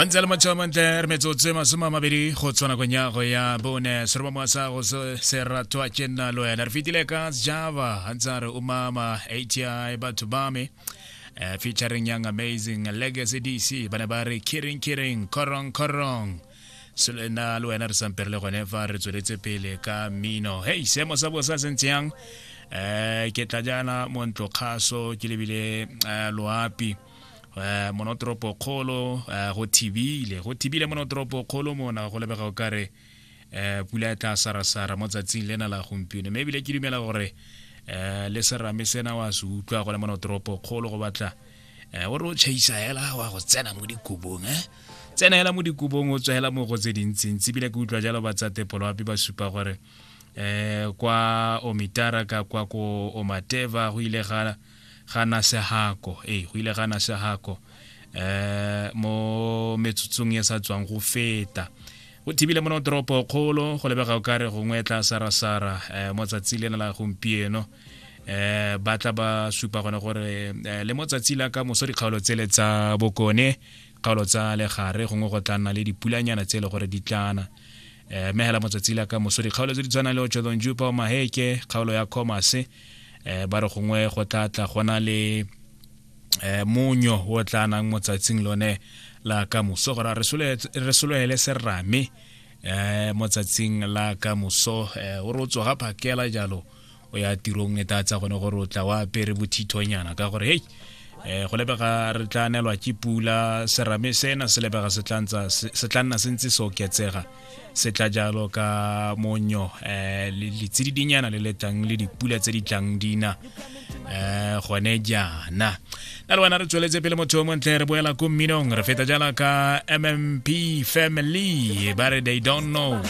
gantsi a le matšhao mantle re metsotso e masome a mabedi go tshwana kong ya go ya bone se re ba moasa go se ratwa ke nna le wena re fetile ka java gantsi a re o mama ati batho ba me eh, featuring young amazing legacy dc ba ne ba re kiring kiring korong korong selena le wena re sampere le gone fa re tsweletse pele ka mmino hei seemo sa bosa se ntse yang um ke tla jaana montlokgaso ke lebile um loapi um monotoropo kgolo um go thibile go thibile monotoropo kgolo mona go lebega o kare um pula ya tla sarasara mo tsatsing lena la gompieno mme ebile ke dumela gore um le serame sena wa se utlwa go le monotoropo kgolo go batla um o re o chaisa hela wa go tsena mo dikobong e tsena hela mo dikobong o tswa hela mo go tse dintsintsi ebile ke utlwa jalo ba tsa tepoloapi ba supa gore um kwa omitara ka kwa ko omateva go ile ga ga na sehako ee go ile ga na sehako eh mo metsotsong e sa tswang go feta go thibile mo toropo kgolo go lebega o kare gongwe tla sarasara eh mo tsatsi le la gompieno eh ba tla ba supa gone gore eh, le mo tsatsi la ka moso dikgaolo tsele tsa bokone kgaolo tsa legare gongwe go tla nna le dipulanyana tse e le gore di tlana eh, megela motsatsi la ka moso dikgaolo tse di tshwanang le ochodon jupa o maheke kgaolo ya commerce um eh, ba re gongwe go tla tla gona le um monyo o tla nang motsatsing lone la ka moso gore re sologele serame um motsatsing la ka moso um o re o tsoga phakela jalo o ya tirong e tatsa gone gore o tla wa apere bothithonyana ka gore hei um go lebega re tla nelwa ke pula serame sena se lebega se tla nna se ntse se oketsega se tla jalo ka monyo um letsididinyana le letlang le dipula tse di tlang dina um gone jaana na le wena re tsweletse pele motho o montle re boela ko mminong re feta jala ka mmp family ba re they don't know